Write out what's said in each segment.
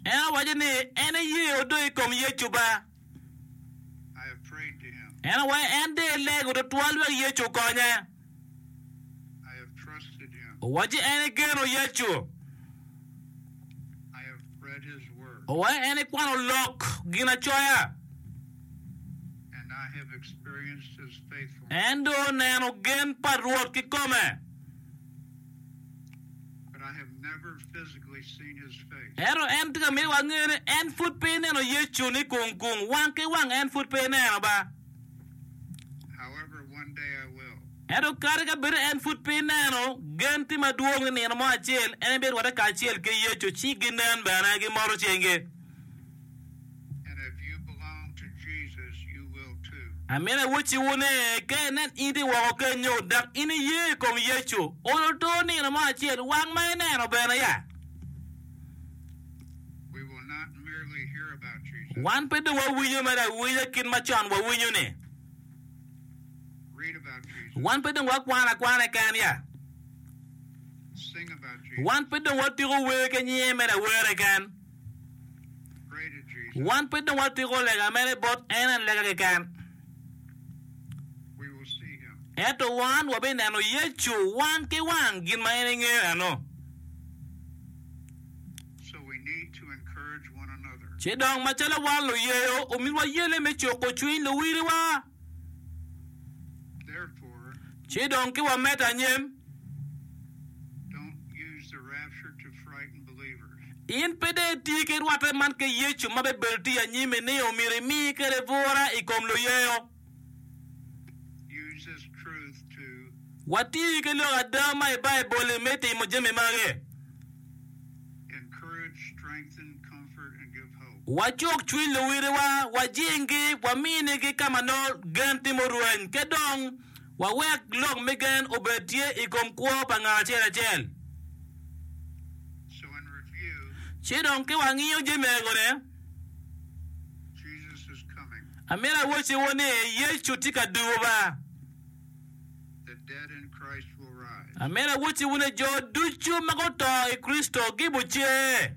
En awaco ni, En iyee odo i kom Yecu ba? En awaco, En de ilego twatwal wek Yecu okonye. Owaco, En igeno Yecu? Owaco, En ikwano lok Ginacoya? En dong oneno gen pa Rwot kikome. Ento en tye ka miyo wangeyo ni en pud pe eneno Yecu ni kung kung, wang ki wang en pud pe eneno ba. Ento kadi ka bed en pud pe eneno, gen tye madwong ni nino mo acel en bino rwatte kacel ki Yecu ci ginen bene, gimoto cingi. Amina awocciwu ni, ka inen in tye woko kenyo, dok in iye i kom Yecu, olo to nino mo acel, wang ma ineno bene ya. Wan pe dong wawinyo mere awinya kit ma con wawinyo-ni. Wan pe dong wakwano akwana keken ya. Wan pe dong watuko wer ki nyinge mere awera keken. Wan pe dong watiko lega mene bot en en lega keken, ento wan wabineno Yecu wang ki wang gin ma en engeyo eno. Ci dong macalo wan luyeyo, omyero wayelle me cuko cwiny luwiliwa. Ci dong ki wamed anyim, in pe dong iti ki rwatte man ki Yecu ma bibedo tye anyimi ni omyero imi kwede bwura i kom luyeyo. Wati ki lok ada ma i Baibul-li me timo jami magi. Wacuk cwiny luwiliwa, wajinggi, waminigi ka ma nongo gen timo orweny, ki dong wawek lok me gen obed tye i kom kwo pa ngat acel acel. Ci dong ka wangiyo jami ego-ni, amito awacciwu ni Yecu tye ka duba. Amito awacciwu ni jo ducu ma guto i Kricito gibucer.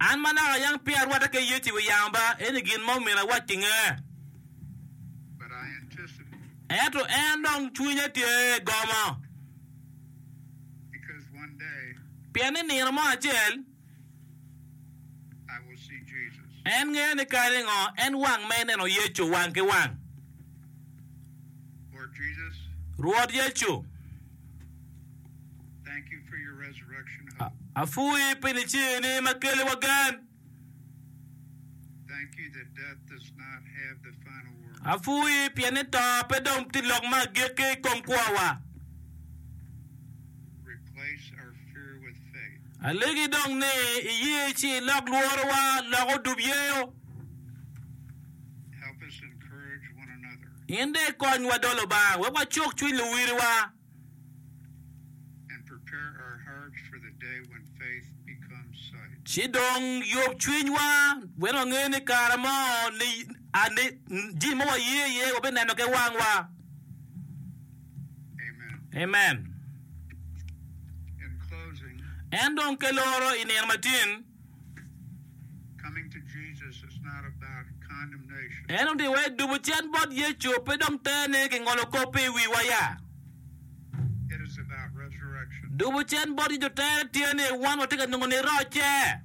An ma naka ayang peya arwatte ki Yecu i wi yamo ba, eni gin ma omyero awac ki nge. Ento en dong cwinya tye gomo, pien ni nino mo acel en ngeyo ni kadi ngo en wang ma ineno Yecu wang ki wang. Rwot Yecu. Apwoyi pi niceeni ma keliwa gen. Apwoyi pien ni to pe dong tye lok me agikki i kom kwowa. Alegi dong ni iye ci ilok lworowa loko odub yeyo. In dong ikonywa dolo bang wek wacuk cwiny luwiliwa. Ci dong yub cwinywa wek wange ni kare mo jami ma waye iye wabineno ki wangwa. En dong ke loro i nino matin. En odiwa i dubo cen bot Yecu, pe dong ter ni kingolo kop pe i wiwa ya. Dubo cen bot Yecu tere tye ni wan watye ka nongo ni rocce.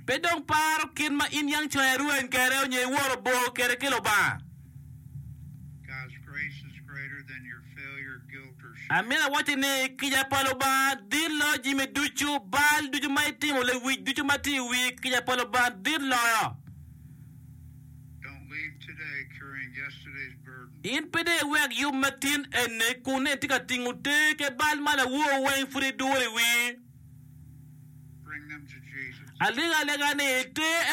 Pe dong paro kit ma in yang conya irweny kwede onyo iworo bor kwede ki Lubanga. Amito awacci ni, kica pa Lubanga dit loyo jami ducu, bal ducu ma itimo, lewic ducu ma tye i wii, kica pa Lubanga dit loyo. In pe dong iwek yub ma tin eni kun nen tye ka tingo ter ki bal ma lawor weng pud iduro i wii. Alega alega ni, ter